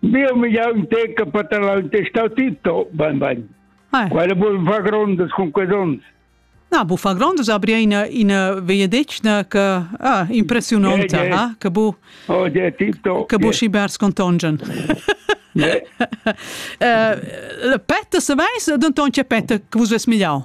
Dio mi ja un teca per tal testau Tito, ben ben. Eh. Quelle bun fa grondas con quei dons. Na, bu fa grondas abri ina ina vei decna che ah, impressiononta, yeah, yeah. ha, che bu Oh, yeah, Tito. Che bu yeah. schibers contongen. Yeah. uh, Petter, se veis, denton c'è Petter che vos ves migliau.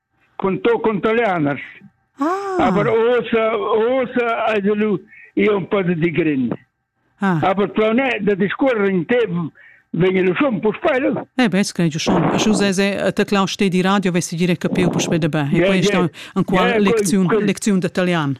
con toccon talianas ah. aber osa osa ei lu io un po di grin ah. aber plone da discorre in te vegn lu schon pus peil eh bes che ju schon ju se se te clau ste di radio vesi dire capiu pus be de be e questa ancora lezione lezione de italian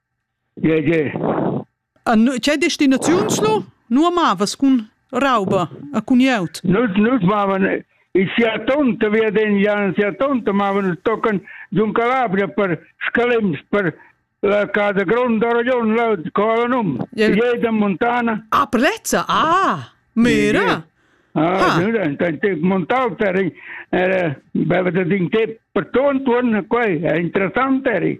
Che destinaziuns lu? Nu amavas cun rauba e cun glieud? Nus nus mavan in sia tonta viadengian sia tonta mavan tocan giun Calabria per Scalems per la casa gronda Aragon là co ha num Jeda Montana Ah Prezza ah mira Ah montau per era beva da din te per tuon tuon quei è interessant eri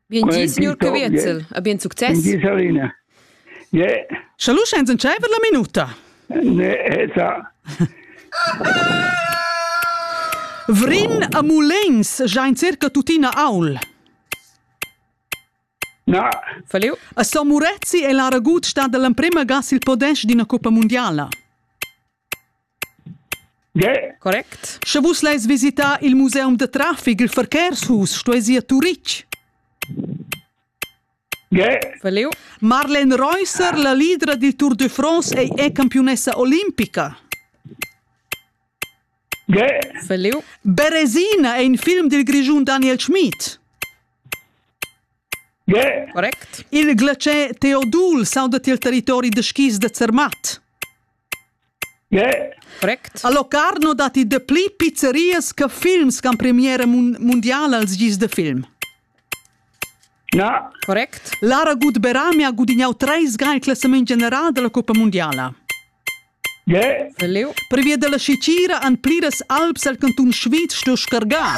Bien gi, signor Caviezel. A bien success. Bien gi, Salina. Yeah. Schaluschens entscheiver la minuta. Ne, esa. Vrin a Mulens, giain circa tuttina aul. Na. Falliu. A San Murezzi è l'aragut stat l'emprima gas il podest d'ina coppa mondiala. Correct. Sche vus leis visitar il museum da traffic il Verkehrshaus, stueis ir a Turitg. Verlieu. Marlene Reusser, la leader dil Tour de France, ei è campiunessa olimpica. Verlieu. Beresina è in film dil Grischun Daniel Schmid. Correct. Il glacier Teodul sauda il territori da skis da Zermatt. Correct. A Locarno datti dapli pizzerias che films ch'han premiera mun mundiala als gis da film. Na. Correct. Lara Gut-Berami ha gudignau treis ga il classament general dalla cuppa mundiala. Yeah. Leu. Previa dalla scicira han pliras alps el cantun Sviz sto scargar.